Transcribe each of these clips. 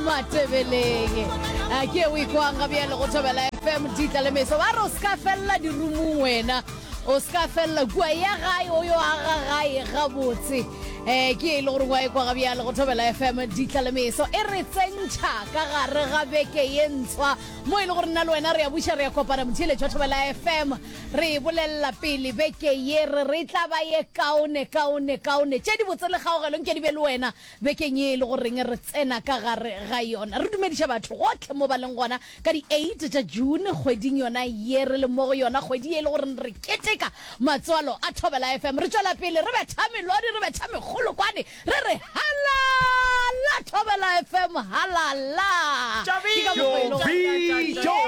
matebeleng a ke o ikwanga bjale go thobela fm ditla le meso ba re o se ka felela dirumong wena o se ka felela kua ya gae o yo aga gae gabotse um ke e le gore wa ikwaga bjale go thobela fm ditla le meso e re tsentšha ka gare ga beke ye ntshwa mo e le gore nna le wena re ya buša re ya kopana motheletšwa thobela fm re e bolelela pele beke ye re re e tla ba ye kaone kaone kaone tše di botse le kgaogelong ke di be le wena Bekeng ye e lego reng re tsena ka gare ga yona, re dumediša batho gohle mo ba leng gona ka di 8 tša June, kgweding yona ye re leng mo go yona, kgwedi ye e lego reng re keteka matswalo a Thobela FM. Re tšwela pele re betha melodi, re betha megolokwane, re re Halala Thobela FM, halala! Ke ka mokgo e lego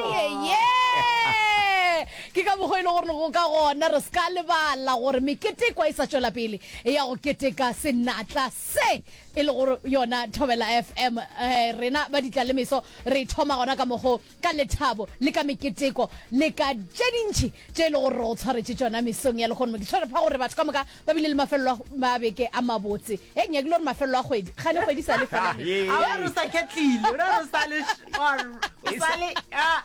Ke ka mokgo e lego gore go ka gona re se ka lebala gore mekete e kwa e sa tšwela pele. ya go keteka senatla se e le go yona Thobela FM. Rena ba Ditlalemeso re e thoma gona ka mokgo ka lethabo le ka meketeko le ka tše dintši tše e le gore re go tshwaretše tšona mesong ya lehono. Ke swere pha gore batho ka moka ba bile le mafelelo a ma beke a mabotse. Hei nyakile gore mafelelo a kgwedi, kgane kgwedi e sa le fela. A wa re o sa ketlile, o re o sa le or o sa le a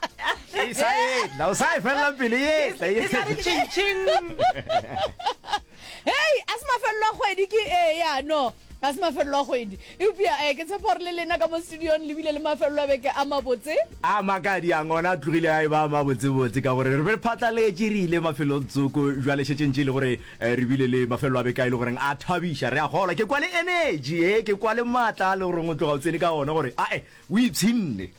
e sa etla, o sa e felela pele e etla e sa le ching ching. hei a se mafelelo a kgwedi ke ee ya no ga se mafelelo a kgwedi eupša um ke tshepa gore le lena ka mo studiong le bile le mafelelo a beke a mabotse a makadi a ngona a tlogile a e ba a mabotsebotse ka gore re be re phatlaletše re ile mafelelong tsoko jwale šetšeng tše e le gore um re bile le mafelelo a beke a e le goreng a thabiša re a kgolwa ke kwa le energy e ke kwa le maatla a le goreng o tloga o tsene ka ona gore ae o ipshinne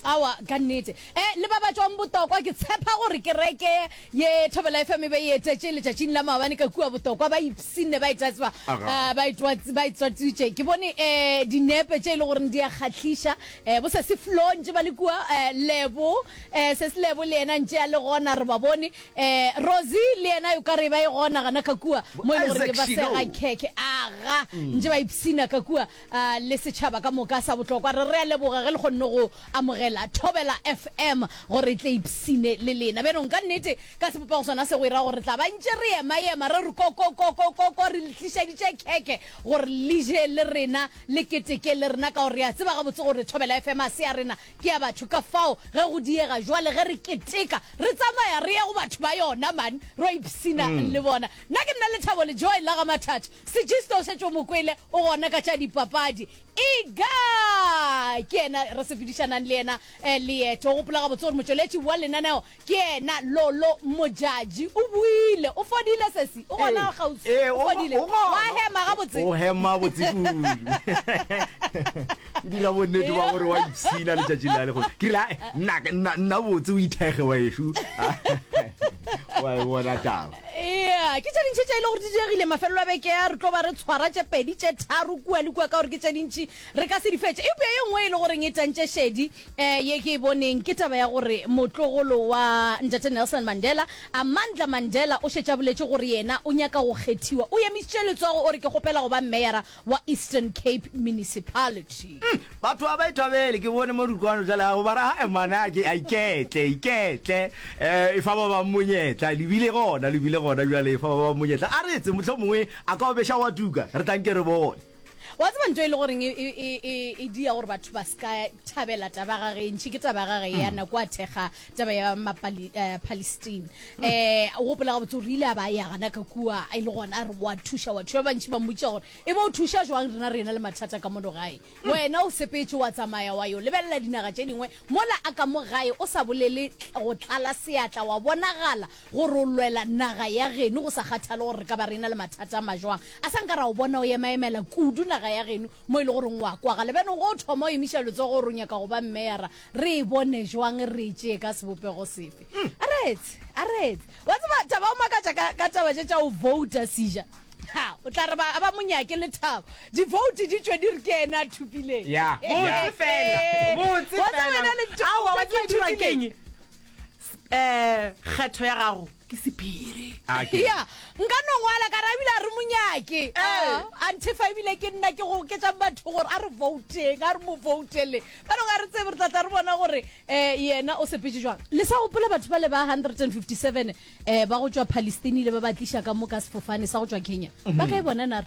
Aowa, ka nnete. E, le ba ba tšwang Botokwa, ke tshepa gore kereke ye, Thobela FM, e be e etetše letšatšing la maabane ka kua Botokwa, ba ipshinne ba itatsba, Aga. eh, ba itwatsi, ba itswatsitše. Ke bone eh, dinepe tše e le goreng di a kgahliša. Eh, bo Sesi Flo ntše ba le kua, eh, Lebo, eh, Sesi Lebo le yena ntše a le gona, re ba bone. Eh, Rosie le yena o ka re ba e gona gana ka kua, Bo mo e le gore Isaac le ba Shilo. sega khekhe. Aga, ntše ba ipshina ka kua. a le setšhaba ka moka sa bohlokwa. Re rea leboga ge le kgonne go amogela Thobela FM gore e tle e ipshine le lena. Bjanong, ka nnete, ka sebopego sona se go ira gore re tla ba ntše re ema-ema re re ko-ko-ko-ko-ko-ko re le tlišaditše khekhe gore le je le rena, le keteke le rena, ka gore re a tseba gabotse gore Thobela FM ga se ya rena, ke ya batho. Ka fao ge go diega jwale ge re keteka, re tsamaya re ya go batho ba yona man, re yo ipshina le bona. Nna ke nna Lethabo Lejoe la ga Mathatha. Sejista o šetše o mo kwele o gona ka tša dipapadi. Ega ke yena re sepedišanang le yena eh, leeto. O gopola gabotse gore motšweletši wa lenaneo ke yena Lolo Modjadji. O buile. O fodile, sesi? O gona kgauswi? Ee, O o- fodile? o gona. Wa hema gabotse? O hema botse kudu. Ke dira bonnete ba gore wa ipshina letšatši la lego ke rile "Ae, nna nna- nna botse o ithekge wa ešu wa e bona taba Eya, ke tše dintši tše e le gore di diregile mafelelo a beke ya. Re tlo ba re tshwara tše pedi tše tharo kua le kua ka gore ke tše dintši re ka se di fetše. Eupša ye nngwe e le goreng e tantše šedi um ye ke e boneng ke taba ya gore motlogolo wa Ntate Nelson Mandela, Amandla Mandela, o šetše a boletše gore yena o nyaka go kgethiwa. O emišitše letsogo o re, Ke kgopela go ba mmeyara wa Eastern Cape Municipality. Umm batho a ba ithabele ke bone mo dikwano jale a go bara ha emane a ke a iketle iketle eh e fa ba ba monyetla le bile gona le bile gona jale e fa ba ba monyetla a re tse motlho mongwe a ka obesha wa tuka re tlanke re bone wa tseba ntho e le goreng e, e, e, e, e dia gore batho ba ska thabela taba ga ge ntši ke taba ga ge ya mm. nako a thekga taba ya mapalestine um eh, o gopola gabotse gore ile a ba ya gana ka kua e le gona a re wa thuša wa thuša bantši ba mmotša gore e ba o thuša jwang rena re na le mathata ka mono gae wena o sepetse wa tsamaya wa yo lebelela dinaga tše dingwe mola a ka mo gae o sa bolele go tlala seatla wa bonagala gore o lwela naga ya geno go sa kgathale gore re ka ba re na le mathata a majwang a sa nka ra o bona o emaemela kudu naga ya geno mo e le goreng wa kwagala bjanong go o thoma o emiša letsogo gore o nyaka go ba mmeyara re e bone jwang re e tšee ka sebopego sefe a re etse a re etse wa tseba taba o makatša ka, ka taba tše tša o vouta seja ha o tla re ba ba mo nyake le thabo divouti di tšwe di re ke ena a thupileng Ya, ya. Botse fela, botse Wa tseba fela. yena le Aowa, wa tseba e dirwa ke eng? um kgetho ya gago ke sephiri ya nka no ngwala ka rabile a re monyake antefa ebile ke nna ke go oketsang batho gore a re vouteng a re mo voutele ba dong a re tsebe re tlatla re bona gore um yena o sepetse jwang le sa gopola batho ba le ba 157 um eh, ba go tswa palestine le ba ba tliša ka mo ka sefofane sa go tswa kenya ba kae bona nare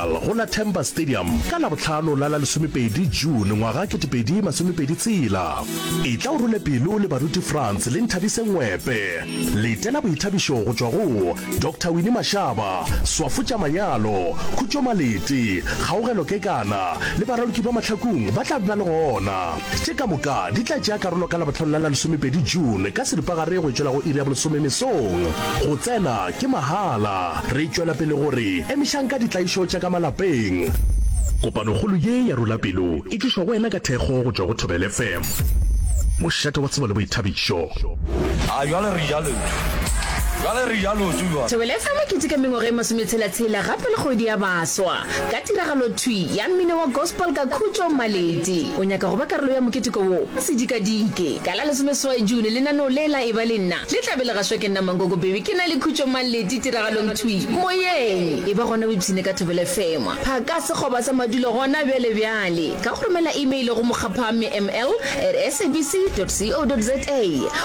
Senegal go la Temba Stadium ka Labohlano la la lesomepedi June ngwaga ketepedi masomepedi tshela. Etla o role pelo le baruti France le Nthabise Ngwepe. Letela boithabišo go tšwa go Doctor Winnie Mashaba, Swafutša Manyalo, Khutšo Malete, Kgaogelo Kekana le baraloki ba mahlakung ba tla ba le gona. Tše ka moka di tla tšea karolo ka Labohlano la la lesomepedi June ka seripagare go e tšwela go iri ya bolesome mesong go tsena Ke mahala. Re tšwela pele go re, Emišang ka ditlaišo tša ka malapeng. Kopanokgolo ye ya Rula Pelo e tlišwa go wena ka thekgo go tšwa go Thobela FM, mošate wa tsebo le boithabišo. A jwale re ja lotse. Jwale re ja lotse jwale. Thobela FM e keteka mengwaga e masometshela-tshela gape le kgwedi ya baswa ka tiragalothwi ya mmino wa gospel ka Khutšo Maleti. O nyaka go ba karolo ya moketeko wo? Sedikadike ka la lesomeseswai June lenaneo le la Eba le Nna Le tla be le gaswa ke nna Mankoko Baby ke na le khutšo Maleti tiragalong thwi moyeng E ba gona Bibsine ka Thobela FM phaka sekgoba sa madulo gona bjale bjale ka go romela email go mokgapha mml at sabc dot co dot za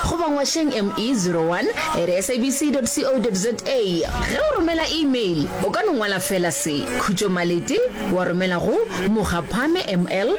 goba ngwašeng ME zero one at sabc dot co dot za Ge o romela email o ka no ngwala fela se, Khutšo Maleti, wa romela go mokgapha mml